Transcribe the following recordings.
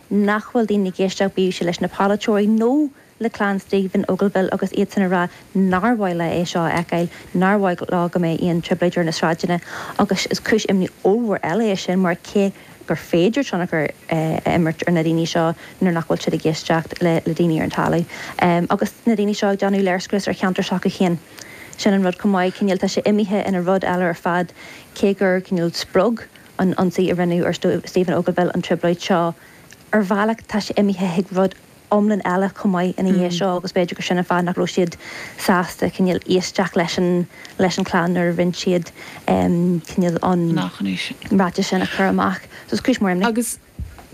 nach bhfuil daoine ag éisteacht bíodh sé leis na polaiteoirí nó le clann Stephen Ogilvie agus iadsan ag rá nár mhaith leo é seo a fheiceáil, nár mhaith leo go mbeidh aon trioblóid ar na sráideanna agus is cúis imní ollmhór eile é sin mar cé gur féidir tionchar a imirt ar na daoine seo nuair nach bhfuil siad ag éisteacht le daoine ar an talamh agus na daoine seo ag déanamh léirscrios ar cheantair s'acu féin sin an rud chomh maith cineál tá sé imithe ina rud eile ar fad cé gur cineál spreag an ionsaí a rinneadh ar Stephen Ogilvie an trioblóid seo. Ar bhealach tá sé imithe chuig rud iomlán eile chomh maith ina dhiaidh seo agus b'fhéidir gur sin an fáth nach raibh siad sásta cineál éisteacht leis an leis an chlann nuair a rinne siad cineál an ráiteas sin a chur amach. Agus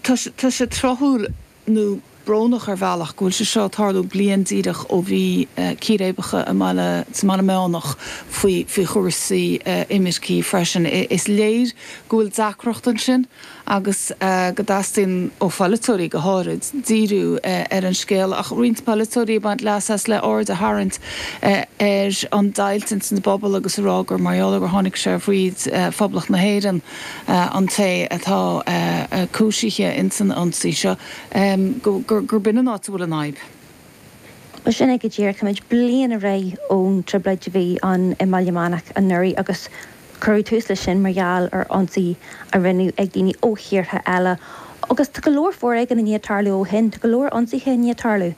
tá sé tráthúil. nó brónach ar bhealach, go bhfuil sé seo ag tarlú bliain díreach ó bhí círéibeacha i mBaile sa mBaile Meánach faoi faoi chúrsaí imirce freisin. Is léir go bhfuil deacracht ansin agus go dteastaíonn ó pholaiteoirí go háirid díriú ar an scéal ach roinnt polaiteoirí ag baint leas as le aird a tharraingt ar an deighilt ins an bpobal agus a rá gur mar gheall ar gur tháinig sé fríd Phoblacht na hÉireann an té atá cúisithe in san ionsaí seo, gurb in an áit a bhfuil an fhadhb. Bhuel, sin é go díreach. Táimid bliain ar aghaidh ón trioblóid a bhí ann i mBaile Meánach anuraidh agus cuireadh tús leis sin mar gheall ar ionsaí a rinneadh ag daoine ó thíortha eile agus tá go leor foréigin i ndiaidh tarlú ó shin, tá go leor ionsaithe i ndiaidh tarlú.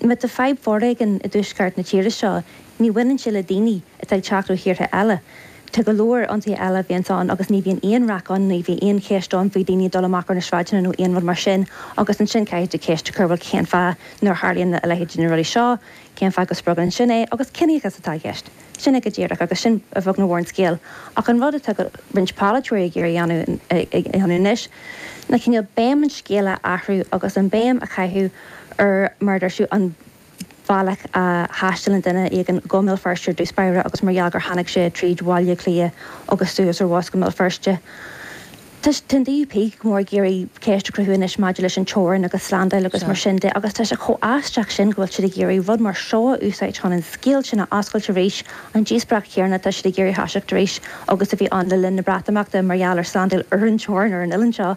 Má tá fadhb foréigin i dtuaisceart na tíre seo, ní bhaineann sé le daoine atá ag teacht ó thíortha eile. Tá go leor ionsaithe eile a bhíonns ann agus ní bhíonn aon raic ann, ní bhíonn aon cheist ann faoi daoine ag dul amach ar na sráideanna nó aon rud mar sin agus ansin caithfidh tú ceist a chur bhuel cén fáth nuair a tharlaíonn a leithéidí na rudaí seo, cén fáth go spreagann sin é agus ciníochas atá i gceist. Sin é go díreach agus sin a bheag nó mhór an scéal ach an rud atá roinnt polaiteoirí ag iarraidh a dhéanamh anois ná cineál béim an scéil a athrú agus an béim a chaitheamh ar mar a deir tú an bealach a thaistealann duine éigin go mBéal Feirste ar dtús báire agus mar gheall gur tháinig sé tríd Bhaile Átha Cliath agus suas ar bhus go mBéal Feirste. Tá an DUP go mór ag iarraidh ceist a chruthú anois maidir leis an teorainn agus slándáil agus mar sin de agus tá sé chomh aisteach sin go bhfuil siad ag iarraidh rud mar seo a úsáid chun an scéal sin a oscailt arís. An díospóireacht chéanna atá siad ag iarraidh a thoiseacht arís agus a bhí ann le linn na Breatimeachta mar gheall ar slándáil ar an teorainn ar an oileán seo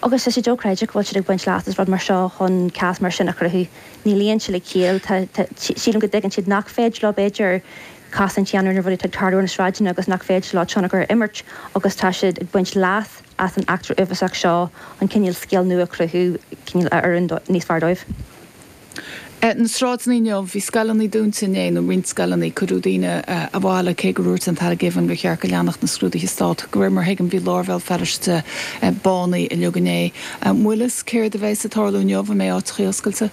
agus tá sé dochreidte go bhfuil siad ag baint leas as rud mar seo chun cás mar sin a chruthú. ní luíonn sé le ciall. Tá, tá, sílim go dtuigeann siad nach féidir leo, b'fhéidir, cosaint a dhéanamh ar na rudaí atá ag tarlú ar na sráideanna agus nach féidir leo tionchar a imirt agus tá siad ag baint leas as an eachtra uafásach seo chun cineál scéal nua a chruthú, cineál a oireann níos fearr dóibh. Na sráideanna inniu, bhí scoileanna dúnta inné, nó roinnt scoileanna, cuireadh daoine abhaile cé gur úirt an tAire Givan gur cheart go leanfadh na scrúduithe Stát. De réir mar a thuigim, bhí lár Bhéal Feirste bánaithe uilig inné. An bhfuil fhios céard a bheas ag tarlú inniu? An mbeidh áiteachaí oscailte?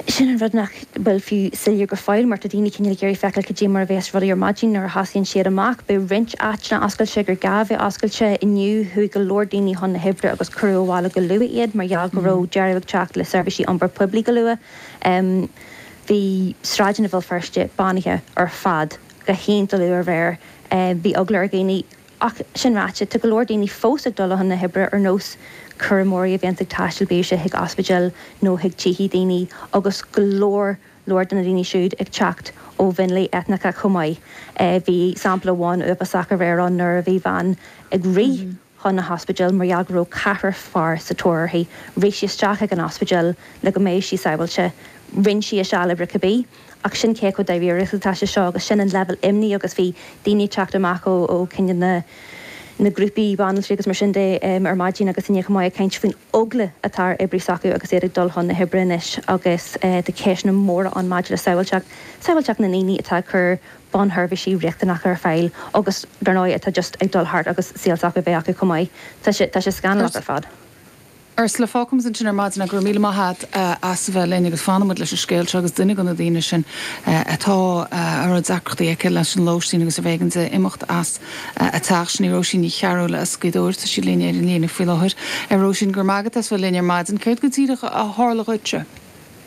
Sin an rud nach bhfuil fiú soiléir go fóill mar tá daoine cinéal ag iarraidh feiceáil cad é mar a bheas rudaí ar maidin nuair a thosaíonn siad amach. Beidh roinnt áiteanna oscailte gur gá a bheith oscailte. Inné chuaigh go leor daoine chun na hoibre agus cuireadh abhaile go luath iad mar gheall go raibh deireadh ag teacht le seirbhísí iompair poiblí go luath. Bhí sráideanna Bhéal Feirste bánaithe ar fad go hiontach luath aréir. Bhí eagla ar dhaoine. Ach sin ráite, tá go leor daoine fós ag dul chun na hoibre ar nós cúramóirí a bíos ag taisteal bíodh sé chuig ospidéil nó chuig tithe daoine agus go leor leor de na daoine siúd ag teacht ó mhionlaigh eitneacha chomh maith. Bhí sampla amháin uafásach aréir ann nuair a bhí bean ag rith chun na hospidéil mar gheall go raibh ceathrar fear sa tóir uirthi. Rith sí isteach ag an ospidéal le go mbeadh sí sabháilte. Rinn sí a seal oibre cibé. ach sin cé chomh dáiríre is atá sé seo agus sin an leibhéal imní agus bhí daoine ag teacht amach ó cinn na na grúpaí banaltraí agus mar sin de ar maidin agus inné chomh maith ag caint faoin eagla atá ar oibrithe s'acu agus iad ag dul chun na hoibre anois agus tá ceisteanna móra ann maidir le sábháilteacht sábháilteacht na ndaoine atá ag cur bunseirbhísí riachtanacha ar fáil agus dar ndóigh atá just ag dul thart agus saol s'acu a bheith acu chomh maith tá sé tá sé scannalach ar fad. Ursula, Fágfaimid ansin é ar maidin ach go raibh míle maith a't as a bheith linn agus fanfaidh muid leis an scéal seo agus duine de na daoine sin atá a raibh deacrachtaí aici leis an lóistín agus arbh éigean di imeacht as a teach, sin í Róisín Ní Chearbhaill as Gaoth Dobhair. Tá sí linn ar an líne faoi láthair. Róisín, Go raibh maith agat as bheith linn ar maidin. Céard go díreach a tharla dhuitse?